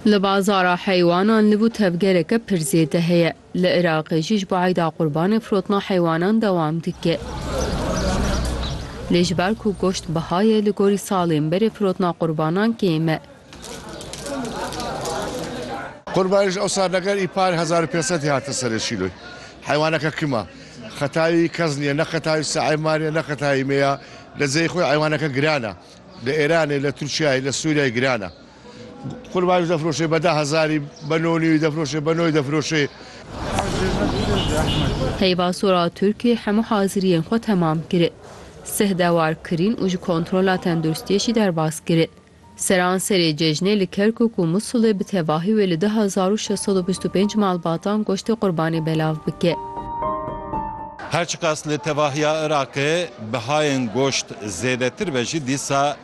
Li bazara heywanan li bo tevgereke pir zêde heye. Li Iraqê jî ji bo Eyda Qurbanê firotina heywanan dewam dike. Lê ji ber ku goşt biha ye li gorî salên berê firotina qurbanan kêm e. Qurbanê ji ew sal ne ger îpar hezar û pênc sedê hatin serê şîloy. Heywaneke kim a. Xetayî kes niye ne xetayî Seeman e ne xetayî me ya. Li ceyê xwe heywaneke giran e. Li Îranê, li Tirkiyeyê, li Sûriyeyê giran e. Qurbanî defiroşê be deh hezarî, be nonî defiroşê, be noy defiroşê. Heyva Sora Turkî hemû haziriyên xwe temam kirin. Sih dewar kirîn û ji kontrola tenduristiyê jî derbas kirin. Seran serê cejnê li Kerkûk û Musulê bi tevahî wê li du hezar û şeş sed û bîst û pênc malbatan goştê qurbanê belav bike. Her çiqas li tevahiya Iraqê bihayên goşt zêdetir be jî dîsa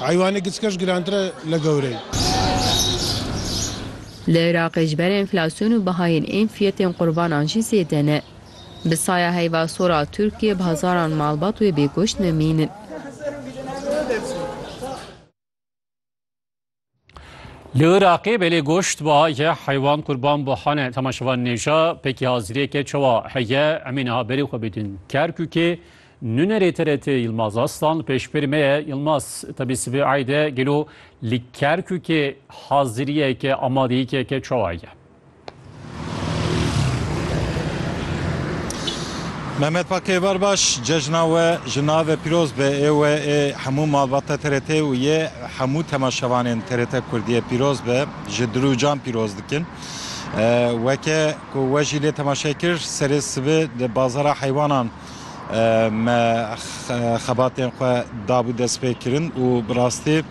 Heywanê giçkeş girantir e li gewreyê. Li Iraqê ji ber enflasyon û bihayên ên fiyetên qurbanan jî zêde ne. Bi saya heyva sor a Tirkiyê bi hezaran malbat wê bêgoşt nemînin. Li Iraqê belê goşt ba ye heywan qurban bo hane temaşevan nêja pekî haziriyeke çawa heye emê niha berê xwe bidin Kerkûkê Nunerê TRT Yilmaz Aslan pêşberî me ye Yilmaz tebî sibê eyde gelo li Kerkûkê haziriyeke amadeyîkeke çawa heye? Mehmet Pakê bar baş cejna we ji navê pîroz be ê we ê hemû malbata TRT û yê hemû temaşevanên TRT Kurdiyê pîroz be ji dil û can pîroz dikin. Weke ku we jî lê temaşe kir serê sibê di bazara heywanan me xebatên xwe dabû destpêkirin û bi rastî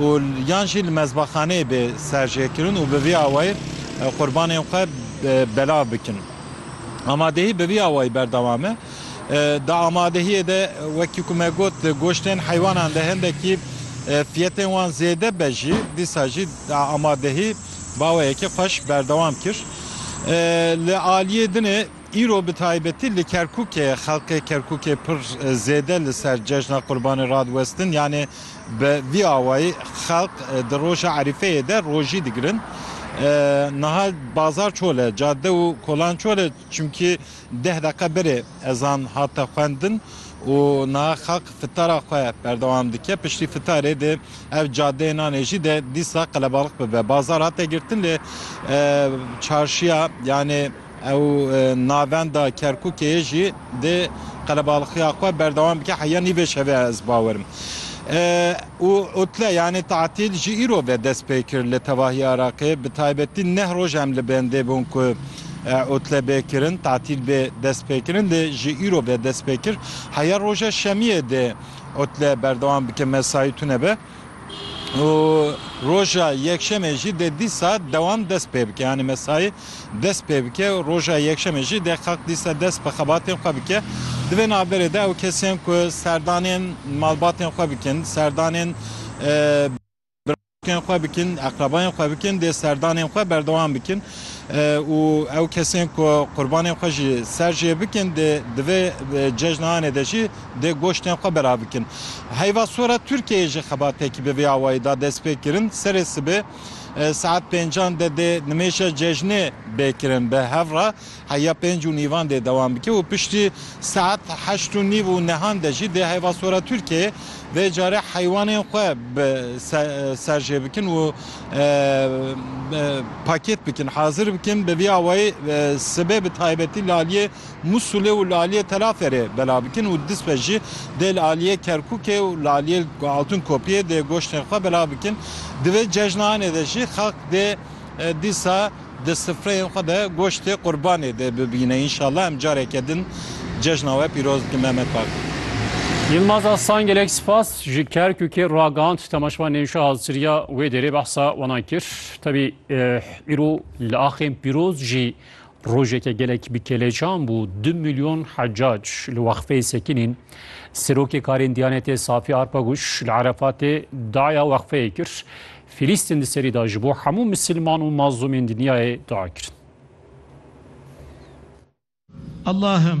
û yan jî li mezbaxaneyê bê serjêkirin û bi vî awayî qurbanên xwe belav bikin. Amadehî bi vî awayî berdewam e. Di amadehiyê de wekî ku me got di goştên heywanan de hindekî fiyetên wan zêde be jî dîsa jî amadehî bi awayekî xweş berdewam kir. Li aliyê din ê. Îro bi taybetî li Kerkûkê xelkê Kerkûkê pir zêde li ser cejna Qurbanê radiwestin yanê bi vî awayî xelk di roja Erîfeyê de rojî digirin. Niha bazar çol e, cadde û kolan çol e çimkî deh deqe berê ezan hate xwendin û niha xelk fitara xwe berdewam dike. Piştî fitarê dê ev cadeyê nanê jî de dîsa qelebalix bibe. Bazar hate girtin lê çarşiya yanê. Ew navenda Kerkûkê jî dê qelebalxiya xwe berdewam bike heya nî vê şevê ez bawer im. Û utle yanî tatîl ji îro ve dest pê kir li tevahî Iraqê. Bi taybetî neh roj em li bendê bûn ku utle bê kirin, tatîl bê dest pê kirin lê ji îro ve dest pê kir heya roja şemiyê dê utle berdewam bike mesayî tune be. û roja yekşemê jî dê dî saet dewam dest pê bike yanî mesayî dest pê bike û roja yekşemê jî dê xelk dîsa dest bi xebatên xwe bike. Di vê navberê de ew kesên ku serdanên malbatên xwe bikin, serdanên birayên xwe bikin, eqrebayên xwe bikin dê serdanên xwe berdewam bikin û ew kesên ku qurbanên xwe jî ser jê bikin dê di vê cejnaanê de jî dê goştên xwe bera bikin. Heyva sor e Tirkiyeyê jî xebatekî bi vê awayî da dest pê kirin. Serê sibê saet pêncan de dê nimêja cejnê bê kirin. Bi hev re heya pênc û nîvan dê dewam bike û piştî saet heşt û nîv û nehan de jî dê Heyva Sor e Tirkiyeyê vê carê heywanên xwe bi ser jê bikin û pakêt bikin, hazir bikin. Bi vî awayî sibê bi taybetî li aliyê. Mûsulê û li aliyê Telaferê bela bikin û dispe jî dê li aliyê Kerkûkê û li aliyê Altunkopiyê dê goştên xwe bela bikin. Di vê cejnaanê de jî xelk dê dîsa di sifreyên xwe de goştê qurbanê dê bibîne. Înşallah em careke din cejna we pîroz dikin Mehmet Bak. Yilmaz Aslan gelek spas ji Kerkûkê ragihand temaşevan nêşa haziriya wê dêrê behsa wana kir. Tevî îro li axên pîroz jî Rojeke gelek bi kêlecan bû du milyon hecac li wexfeyê sekinîn. Serokê karên Diyanetê Safi Arpaguş li Erefatê daya wexfeyê kir. Filîstin di serî da ji bo hemû misilman û mazlûmên dinyayê dua kirin. Allahım,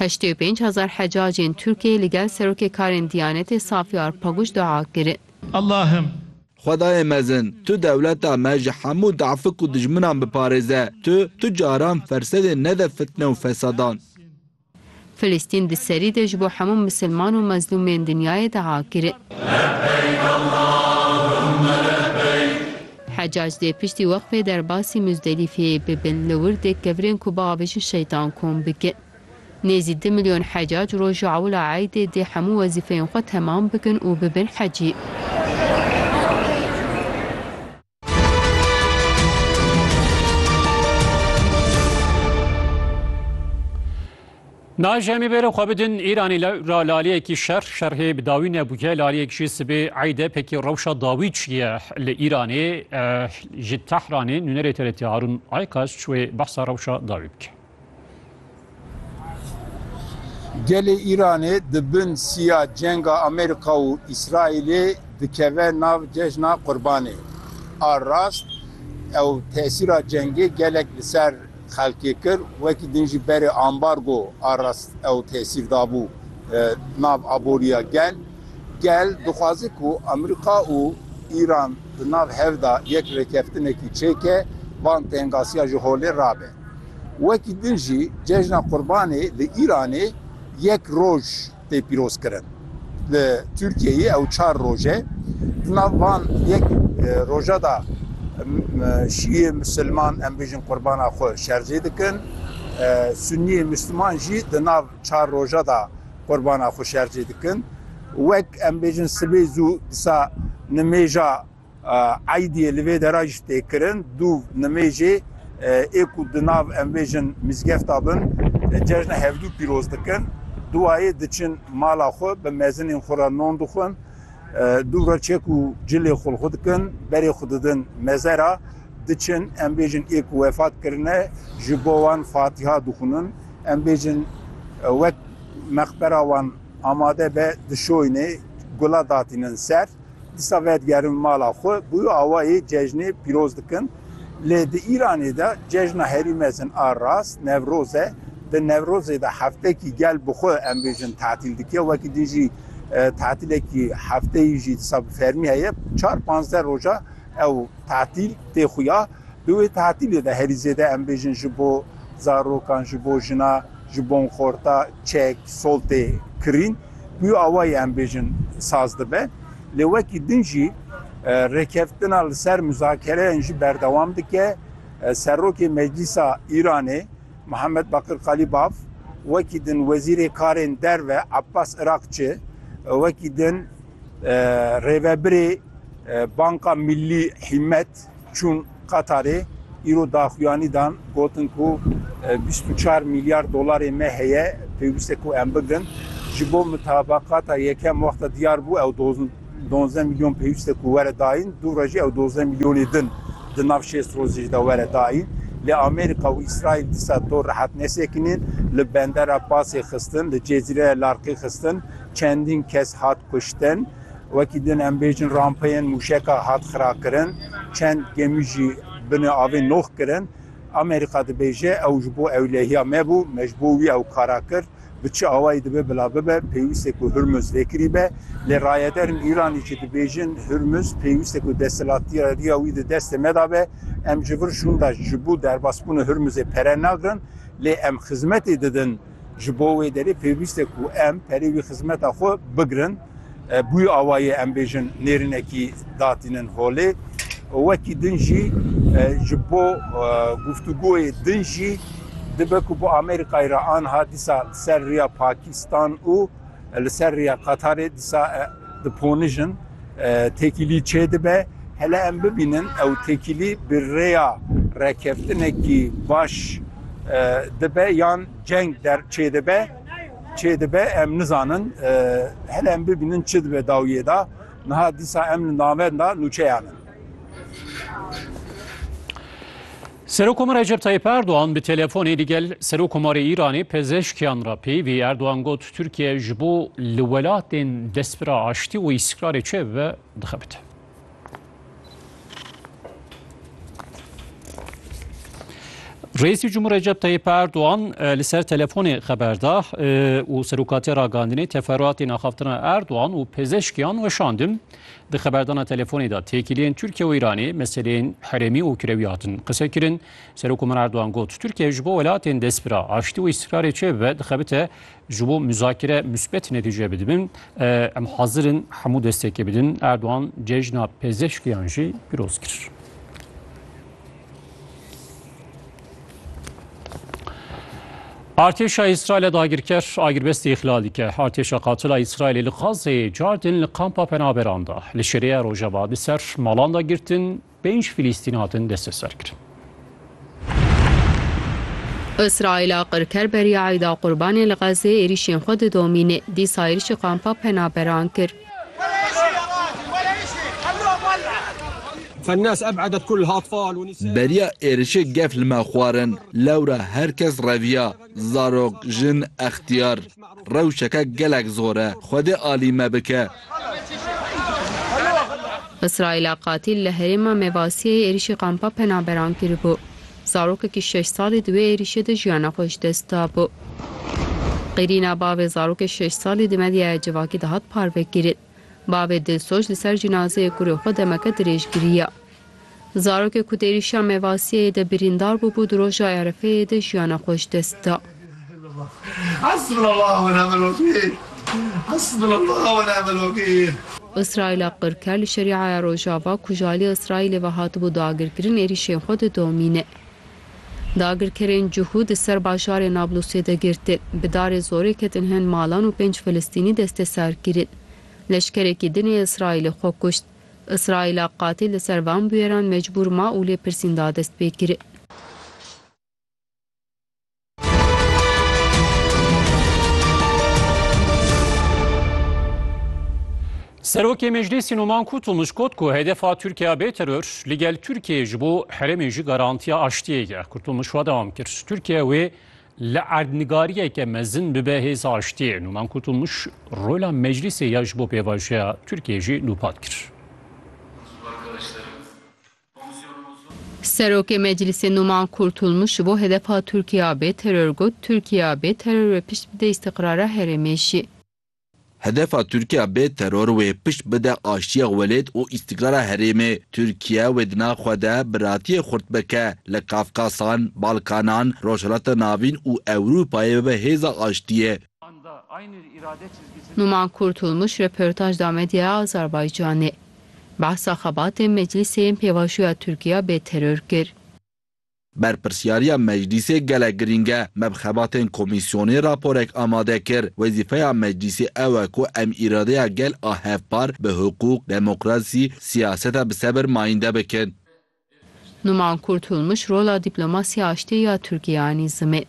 Heştê û pênc hezar hecacên Tirkiyeyê li gel Serokê Karên Diyanetê Safi Arpaguç dua kirin. Allahım! Xwedayê mezin, Tu dewleta me ji hemû dafik û dijminan biparêze, Tu, Tu caran fersedê nede fitne û fesadan. Filistîn di serî de ji bo hemû misilman û mezlûmên dinyayê dua kirin. Hecac dê piştî weqfê derbasî Muzdelîfeyê bibin li wir dê kevirên ku biavêjin şeytan kom bikin. Nêzî du milyon hecac roja ewila eydê dê hemû wezîfeyên xwe temam bikin û bibin hecî. Nayê ji em ê bêro xwe bidin Îranê ra laliyekî şer şerhê bi dawî nebûye laliyek jî sibê eyde pekî rewşa dawî çiye li Îranê ji Tehranê nûnerê TRT Harûn Aykaç wê behsa rewşa dawî bike. Gelê Îranê di bin siya cenga Amerîka û Îsraîlê dikeve nav cejna Qurbanê. A rast ew tesîra cengê gelek li ser xelkê kir, wekî din jî berê ambargo a rast ew tesîr dabû nav aboriya gel. Gel dixwaze ku Amerîka û Îran di nav hev de yek rêkeftinekî çêke, van tengasiya ji holê rabe. Wekî din jî cejna Qurbanê di Îranê yek roj. tê pîrozkirin. Li Tirkiyeyê ew çar roj e. Di nav van yek roja de şîyê misilman em bêjin qurbana xwe şerjê dikin. Sunniyê misilman jî di nav çar roja de qurbana xwe şerjê dikin. Wek em bêjin sibê zû disa nimêja Eydiyê li vê dera jî tê kirin. Du nimêjê ê ku di nav em bêjin mîzgefta bin cejna hevdû pîroz dikin. Duwayê diçin mala xwe bi mezinên xwe re non dixwin. Du re çek û cilê xwe li xwe dikin, berê xwe didin mezera. Diçin em bêjin ê ku wefat kirine ji bo wan fatiha dixwinin. Em bêjin wek meqbera wan amade be dişoyinê gula datînin ser. Dîsa vedigerin mala xwe bi wî awayê cejnê pîroz dikin. Lê di Îranê de cejna herî mezin a rast Newroz e. Di Newrozê de heftekî gel bi xwe em bêjin tetîl dike. Wekî din jî tetîlekî hefteyî jî dîsa bi fermî heye. Çar panzdeh roja ew tetîl tê xuya. Di wê tetîlê de herî zêde em bêjin ji bo zarokan, ji bo jina, ji bon xorta, çek, soltê, kirîn bûyo awayî em bêjin saz dibe. Lê wekî din jî rêkeftina li ser muzakereyên jî berdewam dike. Serokê Meclîsa Îranê Mihemed Bakir Kalîbaf, wekî din Wezîrê Karên Derve Abbas Irakçi, wekî din, Rêvebirê Banka Millî Hîmmet çûn Qatarê, îro daxuyanî dan, gotin ku bîst û çar mîlyar dolarê me heye, pêwîst e ku em bigirin. Ji bo mitabakata yekem wexta diyar bû ew duwazdeh mîlyon pêwîst e ku were dayîn, dû re jî ew duwazdeh mîlyonê din di nav şêst rojê jî de were dayîn. Lê Amerîka û Îsraîl dîsa dor rehet nesekinîn, li bendera Pasê xistin, li cezîreya Larkê xistin. Çendîn kes hat kuştin. Wekî din em bêjin rampeyên mûşeka hat xirakirin. Çend gemî jî binê avê noh kirin. Amerîka dibêje ew ji bo ewlehiya me bû, me ji bo wî ew kara kir. Bi çi awayî dibe bila bibe, pêwîst e ku Hurmuz lêkirî be. Lê rayederên Îranê jî dibêjin Hurmuz pêwîst e ku desthilatgeriya wî di destê me de be. Em ji vir şûnda ji bo derbasbûna Hurmuzê pere nagirin, lê em xizmetê didin. Ji bo wê derê pêwîst e ku em perê wî xizmeta xwe bigirin. Bûye awayê em bêjin nêrînekî datînin holê û wekî din jî ji bo guftûgoyê din jî dibe ku bi Amerîkayê re anha dîsa ser rêya Pakîstan û Li ser riya Qatarê disa di ponijin têkilî çêdibe. Hele em bibînin ew têkilî bi rêya rekeftinekî baş dibe yan ceng der çêdibe çêdibe em nizanin. Hele em bibînin çi dibe dawiyê da. Niha disa em li navenda nûçeyan in. Serokomar Recep Tayyip Erdogan bi telefonê ligel Serokomarê Îranê pezeshkiyan re peyivî Erdogan got Tirkiye ji bo li welatên destpira aştî û îstikrarê çê bibe dixebite. Reîsî Cumhur Recep Tayyip Erdogan e, li ser telefonê xeber da e, û serokatê ragandinê teferruatên axaftina Erdogan û pêzeşkiyan weşandin. Di xeberdana telefonê de têkiliyên Tirkiye û Îranê meseleyên herêmî û kirewî hatin qisekirin. Serokkomer Erdogan got, Tirkiye ji bo welatên destpira aştî û îstiqrarê çêbibe dixebite ji bo muzakere musbet netîce bidibin. Em hazir in hemû destekê bidin. Erdogan cejna pezişkiyan jî piroz kir. Artêşa Îsraîlê dagirker agirbestî îxlal dike. Artêşa qatila Îsraîlê li Xazê cardin li kampa penaberan da. Li şêreya Rojava di ser malan da girtin pênc Filîstîn hatin desteserkirin. Îsraîla qirker beriya Îda Qurbanê li Xezê êrîşên xwe didomîne. Dîsa êrîşê kampa penaberan kir. Beriya êrişê gef li me xwarin. Lewra her kes reviya, zarok, jin, extiyar. Rewşeke gelek zor e. Xwedê alî me bike. Îsraîla qatîl li herêma Mevasiyeyê êrişî kampa penaberan kiribû. Zarokekî şeş salî di wê êrîşê de jiyana xwe ji dest da. Bi qîrîna bavê zarokê şeş salî di medyaya civakî de hat parvekirin. Bavê dilsoz li ser cinazeyê kurê xwe demeke dirêj giriya. Zarokê ku di êrîşa Mevasiyeyê de birîndar bûbû di roja Erefeyê de jiyana xwe ji dest da. Îsraîla qirker li Şerîaya Rojava ku ji aliyê Îsraîlê ve hatibû dagirkirin êrîşên xwe didomîne. Dagirkerên cihû di ser bajarê Nablusê de girtin. Bi darê zorê ketin hin malan û pênc Filistînî desteser kirin. Leşkerekî din ê Îsraîlê xwe kuşt. Îsraîla qatîl li ser van bûyeran mecbûr ma û lêpirsîn da dest pê kirin. Serokê Meclîsî Numan Kûtû mişkot ku hedefa Tirkiya bê teror li gel Tirkiyeyê ji bo herêmê jî garantiya aştiyê ye. Kûtû mişwa dewam kir. Tirkiye wê li erdnigariyeke mezin bibe hêza aştiyê. Numan Kûtû miş rola meclîsê ya ji bo pêvajoya Tirkiyeyê jî nûpat kir. Serokê Meclîsê Numan Kurtulmuş ji bo hedefa Tirkiya bê teror got, Tirkiya bê teror wê pişt bide îstîqrara herêmê jî. Hedefa Tirkiya bê teror wê pişt bide aştiya welêt û îstîqrara herêmê. Tirkiye wê di nav xwe de biratiyê xurt bike li Kafkasan, Balkanan, Rojhilata Navîn û Ewrûpayê bibe hêza aştiyê. Numan Kurtulmuş röportaj da medyaya Azerbaycanê. Behsa xebatên Meclîsê yên pêvajoya Tirkiya bê teror kir. Berpirsyariya Meclîsê gelek girîng e. Me bi xebatên komîsyonê raporek amade kir. Wezîfeya Meclîsê ew e ku em îradeya gel a hevpar bi hiqûq, demokrasî, siyaseta bi sebir mayînde bikin. Numan Kurtulmuş rola dîplomasî aştiyê ya Tirkiyeyê anî zimê.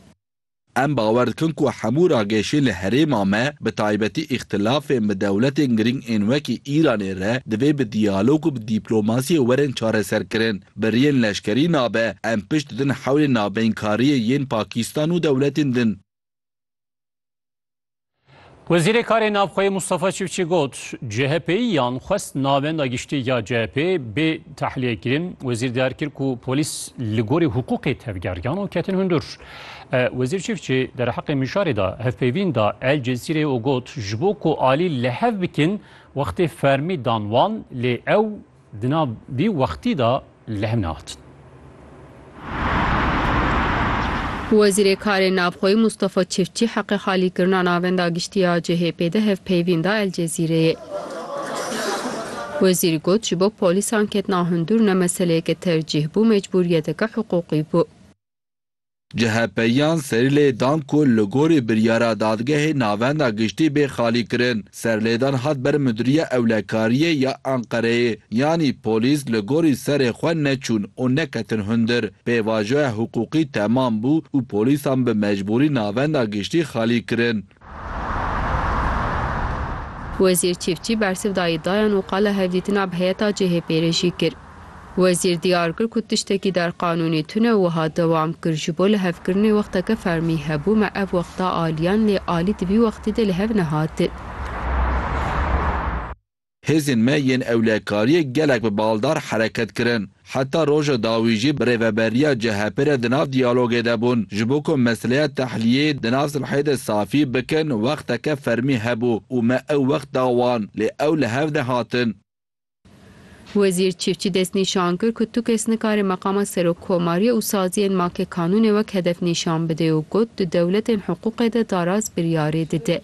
Em bawer dikin ku hemû ragêşên li herêma me, bi taybetî îxtilafên bi dewletên girîng ên wekî Îranê re divê bi diyalog û bi dîplomasiyê werin çareserkirin. Biriyên leşkerî nabe, em pişt didin hewlên navbeyinkariyê yên Pakistan û dewletên din. Wezîrê Karê Navxweyê Mustafa Çiftçi got, CHP'yiyan xwest navenda giştî ya CHP'ê bê tehliyekirîn. Wezîr diyar kir ku polîs li gorî hiqûqê tevgeriyan û ketin hundir. E, Wezîr Çiftçi derheqê mijarê de hevpeyvîn da El Cezîreyê û got, ji bo ku alî li hev bikin wextê fermî dan wan lê ew Di nav vî wextî de li hev nehatin. Wezîrê Karên Navxweyî Mustafa Çiftçî heqê xalîkirina Navenda Giştî ya CHP'ê de hevpeyvîn da El Cezîreyê. Wezîr got, Ji bo polîsan ketina hundir ne meseleyeke tercîh bû, mecbûriyeteke hiqûqî bû. CHP'yan serîlê dan ku li gorî biryara Dadgehê Navenda Giştî bê xalîkirin. Serlêdan hat ber Mudiriya Ewlekariyê ya Enqereyê, yanî polîs li gorî serê xwe neçûn û neketin hundir. Pêvajoya hiqûqî temam bû û polîsan bi mecbûrî Navenda Giştî xalî kirin. Wezîr Çîfçî bersiv da îdiayan û qala hevdîtina bi heyeta CHP'ê re jî kir. Wezîr diyar kir ku tiştekî der qanûnî tune wiha dewam kir, Ji bo lihevkirinê wexteke fermî hebû me ev wexta aliyan lê alî di vî wextî de li hev nehatin. Hêzên me yên ewlekariyê gelek bi baldar hereket kirin. Heta roja dawî jî bi rêveberiya CHP'ê re di nav diyalogê de bûn. Ji bo ku meseleya tehliyê di nav silhê de safî bikin wexteke fermî hebû û me ew wext da wan. Lê ew li hev nehatin. Wezîr Çîfçî destnîşan kir ku tu kes nikare meqama Serokkomariyê û saziyên make kanûnê wek hedef nîşan bide û got, di dewletên hiqûqê de daraz biryarê dide.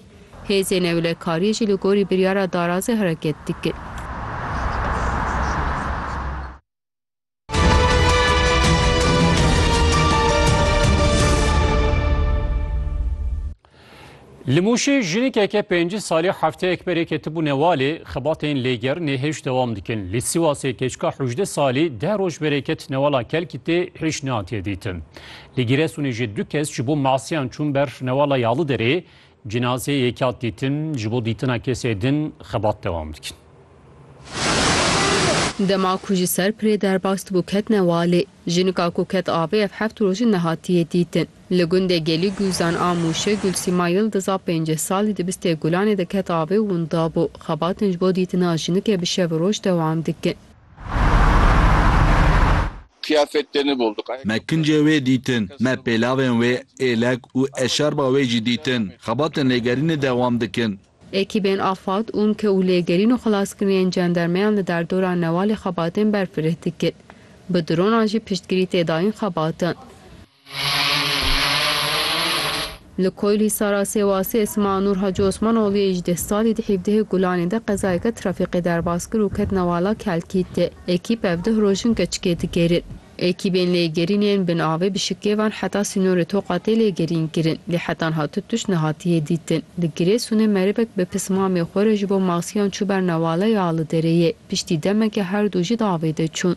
Hêzên ewlekariyê jî li gorî biryara darazê hereket dikin. Li Mûşê jinikeke pêncî salî hefteyek berê ketibû Newalê, xebatên lêgerinê hêj dewam dikin. Li Sîwasê keçika hewjdeh salî deh roj berê ket Newala Kelkîtê hêj nehatiye dîtin. Li Gîresunê jî du kes ji bo masiyan çûn ber Newala Yalıderê, Cinazeyê yekya dîtin, ji bo dîtina kesê din xebat dewam dikin. Dema ku ji ser pirê derbas dibû ketine walê. Jinika ku ket avê ev heft roj in nehatiye dîtin. Li gundê Gelî Guzan a Mûşê Gulsîma Yildiz a pêncî salî di bistê gulanê de ket avê û winda bû. Xebatên ji bo dîtina jinikê bi şev û roj dewam dikin. Me kincê wê dîtin, me pêlavên wê, êlek û eşarba wê jî dîtin. Xebatên lêgerînê dewam dikin. Ekîbên AFAD, UNKE û lêgerîn û xelaskiriyên cendermeyan li derdora Newalê xebatên berfireh dikin. Bi dronan jî piştgirî tê dayîn xebatan. Li Koyilhîsara Sêwasê Esma Nûr Hacî Osmanoglûyê ji deh salî di hîvdehê Gulanê de qezayeke trafîkê derbas kir û ket newala Kelkîtê. Ekîp ev deh roj in keçikê digerin. Ekîbên lêgerîn yên bin avê bi şikêvan heta sînorê Toqa tê lêgerîn kirin, lê hetan hatu tişt nehatiye dîtin. Li Girêsûnê merivek bi pismamê xwe re ji bo maksiyan çû ber newala ya li dereyê. Piştî demeke her du jî di avê de çûn.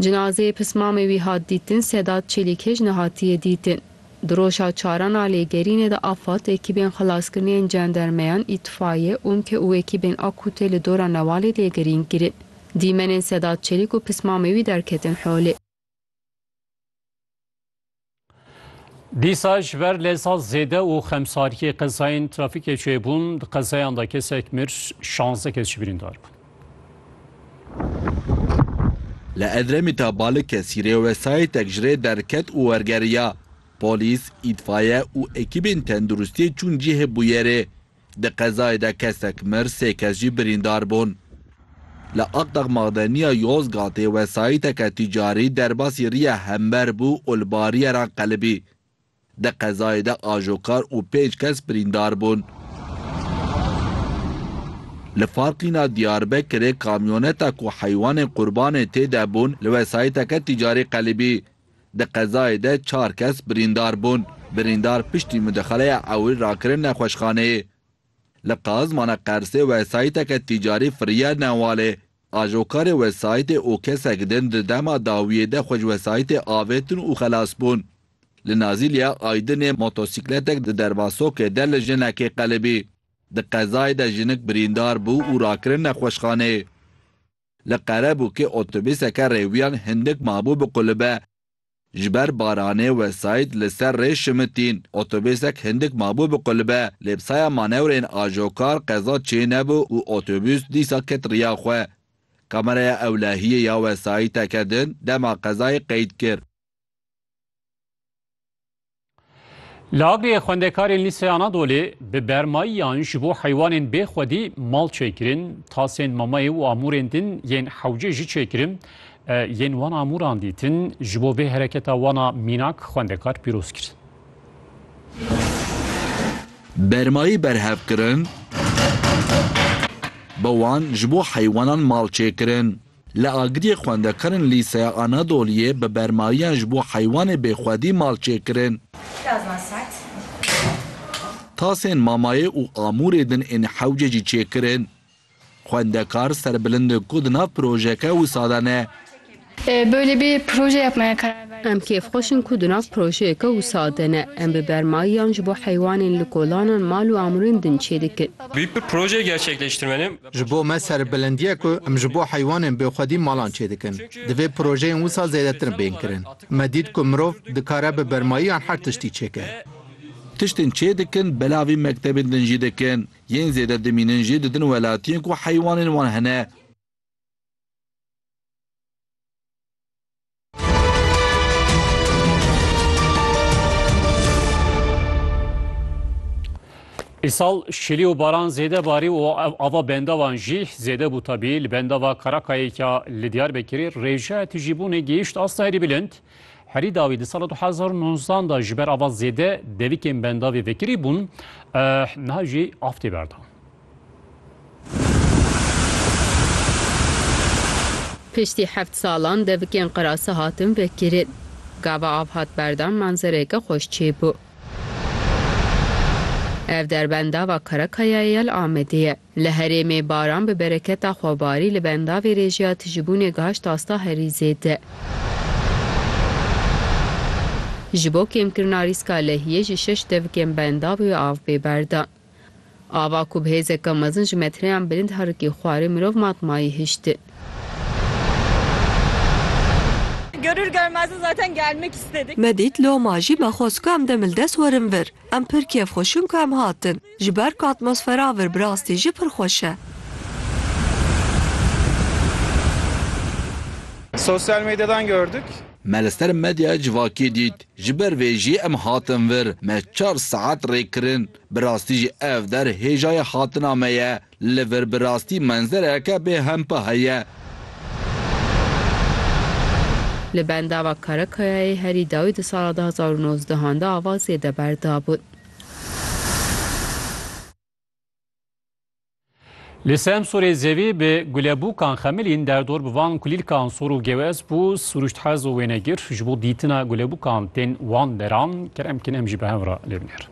Cinazeyê pismamê wî hat dîtin Sedat Çelîkêj nehatiye dîtin. Di roja çaran a lêgerînê de AFAD, ekîbên xelaskirinê yên cendermeyan, îtfaiye, umke û ekîbên AKU tê li dora Newalê lêgerîn kirin. Dîmenên Sedat Çelîk û pismamê wî derketin holê. Dîsa ji ber lêza zêde û xemsariyê qezayên trafîkê çêbûn di qezayan de kesek mir şanze kes jî birîndar bûn. Li Edremit'a Balikesî rê wesayîtek ji rê derket û wergeriya. Polîs, îtfaye û ekîbên tenduristiyê çûn cihê bûyerê. Di qezayê de kesek mir, sê kes jî birîndar bûn. Li Aqdex Madeniya Yozgatê wesayîteke tîcarî derbasî riya hember bû û li bariyeran qelibî. Di qezayê de ajokar û pênc kes birîndar bûn. Li farqîna Diyarbekirê kamyoneta ku heywanên qurbanê tê de bûn li wesayîteke tîcarî qelibî. Di qezayê de çar kes birîndar bûn. Birîndar piştî mudexeleya ewil rakirin nexweşxaneyê. Li Qazmana Qersê wesayîteke tîcarî firiye Newalê. Ajokarê wesayîtê û kesek din di dema dawiyê de xwe ji wesayîtê avêtin û xelas bûn. Li Nazîliya Aydinê motosîkletek di derbasokê de li jinekê qelibî. Di qezayê de jinik birîndar bû û rakirin nexweşxaneyê. Li Qerebûkê otobîseke rêwiyan hindik mabû bi qûlibe. Ji ber baranê wesayît li ser rê şimitîn. Otobîsek hindik mabû bi qûlibe. Lê bi saya manewreyên ajokar qeza çê nebû û otobîs dîsa ket riya xwe. Kameraya ewlehiyê ya wesayîteke din dema qezayê qeyd kir. Li Agiriyê xwendekarên Lîsey Anadolê bi bermayiyan ji bo heywanên bê xwedî mal çêkirin, tasên mamayê û amûrên din yên hewce jî çêkirin. Yên wan amûran dîtin ji bo vê hereketa wan a mînak xwendekar pîroz kir. Bermayî berhev kirin, bi wan ji bo heywanan mal çêkirin. Li Agiriyê xwendekarên Lîseya Anadoliyê bi bermayiyan ji bo heywanê bêxwedî mal çêkirin. Tasên mamayê û amûrê din ên hewce jî çêkirin. Xwendekar serbilind in ku di nav projeyeke wisa de ne. Em kêfxweş in ku di nav projeyeke wisa de ne. Em bi bermayiyan ji bo heywanên li kolanan mal û amûrên din çêdikin. Ji bo me serbilindîye ku em ji bo heywanên bêxwedî malan çêdikin, divê projeyên wisa zêdetir bên kirin. Me dît ku mirov dikare bi bermayiyan her tiştî çêke. Tiştên çêdikin belavî mektebên din jî dikin. Yên zêde dimînin jî di din welatiyên ku heywanên wan hene. Îsal şilî û baran zêde barî û ava bendavan jî zêde bû tabî li bendava Karakayêka li Diyarbekirê rêjeya tijîbûnê gihîşt asta herî bilind. Herî dawî di sala 2019 da ji ber ava zêde devîkên bendavê vekirî bûn, niha jî av tê berdan. Piştî heft salan devikên qirase hatin vekirin. Gava av hat berdan manzereyeke xweş çêbû. Ev derbenda va Karakayayê ya li Amedê ye. Li herêmê baran bi bereketa xwe barî li bendavê rêjeya tijîbûnê gihişt asta herî zêde. Ji bo kêmkirina rîska lehiyê ji şeş devikên bendav û ya av bê berdan. Ava ku bi hêzeke mezin ji metreyan bilind herikî xwarê mirov matmayî hişti. Görür görmez zaten gelmek istedik. Me dît loma jî me xwest ku em dem li dest werin vir. Em pir kêf xwişin ku em hatin. Ji ber ku atmosfera vir bi rastî jî pir xweş e. Sosyal medyadan gördük. Me li ser medyaya civakî dît. Ji ber vê jî em hatin vir, me çar saet rê kirin. Bi rastî jî ev der hêjayê hatina me ye. Li vir bi rastî menzereke bê hempa heye. Li bendava Karakayayê herî dawî di sala du hezar û nozdehan de ava zêde berdabûn. Li Semsûrê zevî bi gulebûkan xemilîn derdor bi van kulîlkan sor û gewez bû, sirûşt hez û wênegir ji bo dîtina gulebûkan tên wan deran. Kerem Kîn em jî bi hev re lê binêr.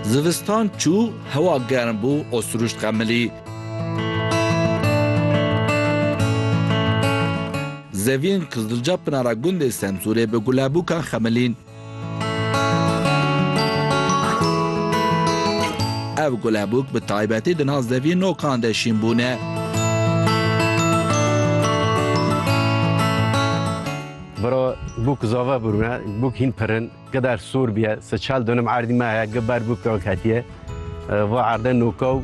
Zivistan çû, hewa germ bû û sirûşt xemilî. Zevîn Kizilca Pinara Gundê Semsûrê bi gulebûkan xemilîn. Ev gulebûk bi taybetî di nav zevî nokan de şîn bûne. Biro bûk zave bûne, bûk hîn pirin. Gider sor biye, se çal dönüm erdî me heye, gi ber bû kewk hetiye. Va erde nokaw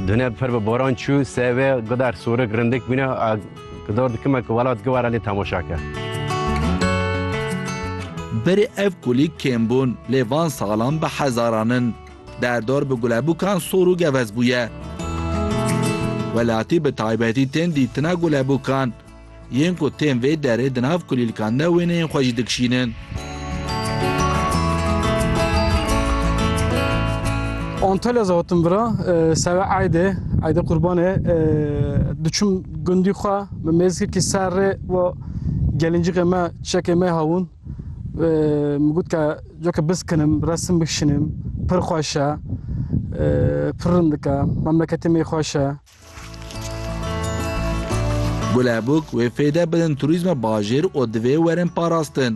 döne per bi boran çû, se ve gider sorik rindik bûne, gidor dikime ki welat gi were lê temaşa ke. Berê ev kulî kêm bûn lê van salan bi hezaran in. Derdor bi gulebûkan sor û gevez bûye. Welatî bi taybetî tên dîtina gulebûkan. Yên ku tên vê derê di nav kulîlkan de wêneyên xwe jî dikişînin. Antalya zatim bira seve ayde ayde qurbane diçim gundi xwe me mêzke ki ser rê ve gelincîqê me çekê me hawun min got ke coke biskinim resim bikişinim pir xweş e pir rind dike memleketê me xweş e Gulebûk wê fêde bidin turîzma bajêr û divê werin parastin.